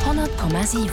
100,7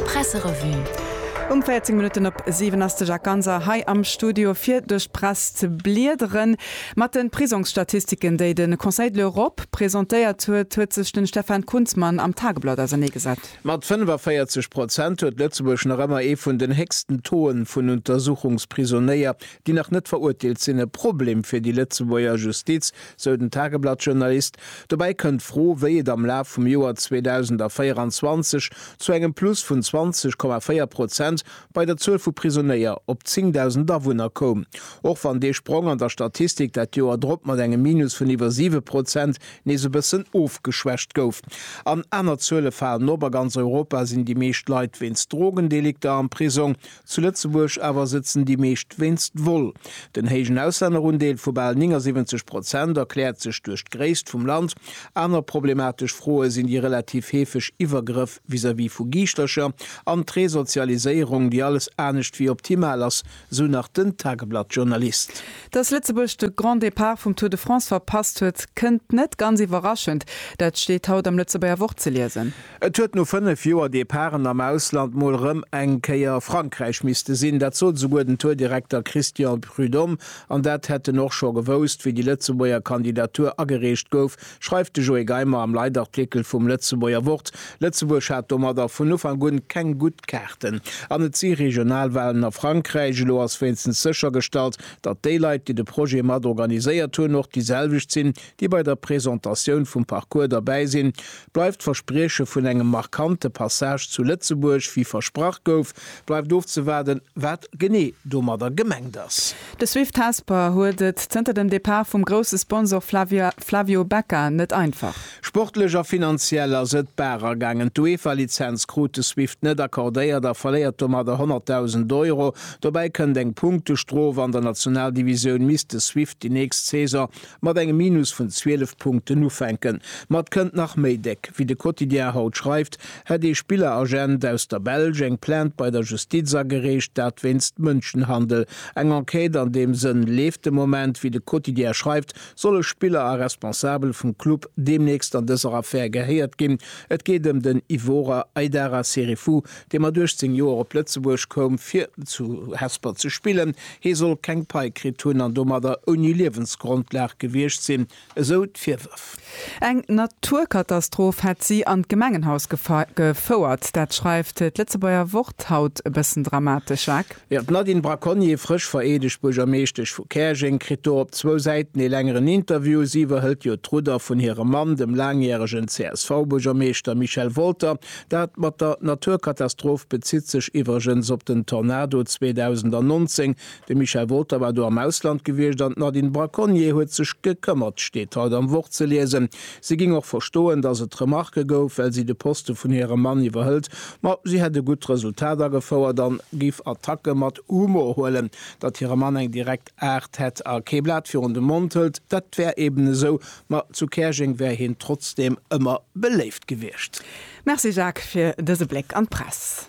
Presserevue. Um 14 Minutten op 7 ass de Jacques Ganser hei am Studio fir duerch d'Press ze bliedere mat de Prisongsstatistiken, déi de Conseil de l'Europe presentéiert huet, huet sech de Stefan Kunzmann am Tageblatt ausernee gesat. Mat 45 Prozent huet Lëtzebuerg nach ëmmer ee vun den héchsten Taux'e vun Untersuchungsprisonnéier, déi nach net verurteelt sinn. E Problem fir déi Lëtzebuerger Justiz, sou den Tageblatt-Journalist. Dobäi kënnt d'Fro, wéi et am Laf vum Joer 2024 zu engem Plus vun 20,4 Prozent bei der Zuel vu Prisonéier op 10.000 Awunner koum, och wann dee Sprong an der Statistik dat Joer drop mat engem Minus vun iwwer siwe Prozent nees e bëssen ofgeschwächt gouf. An aner Zuele falen op, A ganz Europa sinn déi meescht Leit wéinst Drogendelikter am Prisong, Zu Lëtzebuerg awer sëtzen déi meescht wéinst Vol. Den héijen Auslännerundeel vu bal 79 Prozent erkläert sech duerch d'Gréisst vum Land. Aner problematesch Froe sinn déi relativ heefeg Iwwergrëff vis-à-vis vu Giischtercher an d'Resozialiséierung, déi alles anescht wéi optimal ass, sou nach den Tageblatt-Journalist. Datt Lëtzebuerg de Grand Départ vum Tour de France verpasst huet, kënnt net ganz iwwerraschend. Dat steet haut am Lëtzebuerger Wort ze liesen. Et huet no 5 Joer Departen am Ausland mol rëm eng Kéier Frankräich misste sinn. Dat sot esouguer den Tour-Direkter Christian Prud'homme. An dat hätt en och scho gewousst, wéi déi Lëtzebuerger Kandidatur agereecht gouf, schreift de Joé Geimer am Leitartikel vum Lëtzebuerger Wort. Lëtzebuerg hat domadder vun Ufank un keng gutt Kaarten. An et si Regionalwalen a Frankräich. Elo ass wéinstens séchergestallt, datt déi Leit, déi de Projet mat organiséiert hunn, och déi selwecht sinn, déi bei der Presentatioun vum Parcours derbäi sinn, bleift d'Versprieche vun engem markante Passage zu Lëtzebuerg, wéi versprach gouf. Bleift ofzewaarden, wat genee domadder gemengt ass. De Swift Hesper huet et zënter dem Depart vum grousse Sponsor Flavio Becca net einfach. Sportlech a finanziell ass et d'Baach agaangen. D'UEFA-Lizenz krut de Swift net accordéiert a verléiert domadder 100.000 Euro. Dobäi kënnt eng Punktestrof. An der Nationaldivisioun misst de Swift déi nächst Saison mat engem Minus vun 12 Punkten ufänken. Ma et kënnt nach méi déck. Wéi de Quotidien haut schreift, hätt ee Spilleragent aus der Belsch eng Plainte bei der Justiz agereecht, dat wéinst Mënschenhandel. Eng Enquête an deem Sënn leeft de Moment. Wéi de Quotidien schreift, solle Spiller a Responsabel vum Club deemnächst an dëser Affär gehéiert ginn. Et geet ëm den Ivorer Aidara Serifou, dee mat 18 Joer op Lëtzebuerg koum, fir zu Hesper ze spillen, hie soll keng Pai kritt hunn an domadder ouni Liewensgrondlag gewiescht sinn, esou d'Virwërf. Eng Naturkatastroph hätt si an d'Gemengenhaus gefouert. Dat schreift d'Lëtzebuerger Wort haut e bëssen dramatesch, Jacques. Jo, d'Nadine Braconnier, frësch vereedegt Buergermeeschtesch vu Käerjeng, kritt do op zwou Säiten ee längeren Interview. Si iwwerhëlt jo d'Rudder vun hirem Mann, dem laangjäregen CSV-Buergermeeschter Michel Wolter. Dat mat der Naturkatastroph bezitt sech iwwregens op den Tornado 2019. De Michel Wolter war do am Ausland gewiescht an d'Nadine Braconnier huet sech gekëmmert, steet haut am Wort ze liesen. Si géing och verstoen, datt et Remarke gouf, well si de Poste vun hirem Mann iwwerhëlt. Ma si hätt e gutt Resultat agefouert a géif Attacke mat Humor huelen. Datt hire Mann eng direkt. Aart hätt a kee Blat virun de Mond hëlt, dat wär eben esou, ma zu Käerjeng wär hien trotzdeem ëmmer beléift gewiescht. Merci Jacques fir dëse Bléck an d'Press.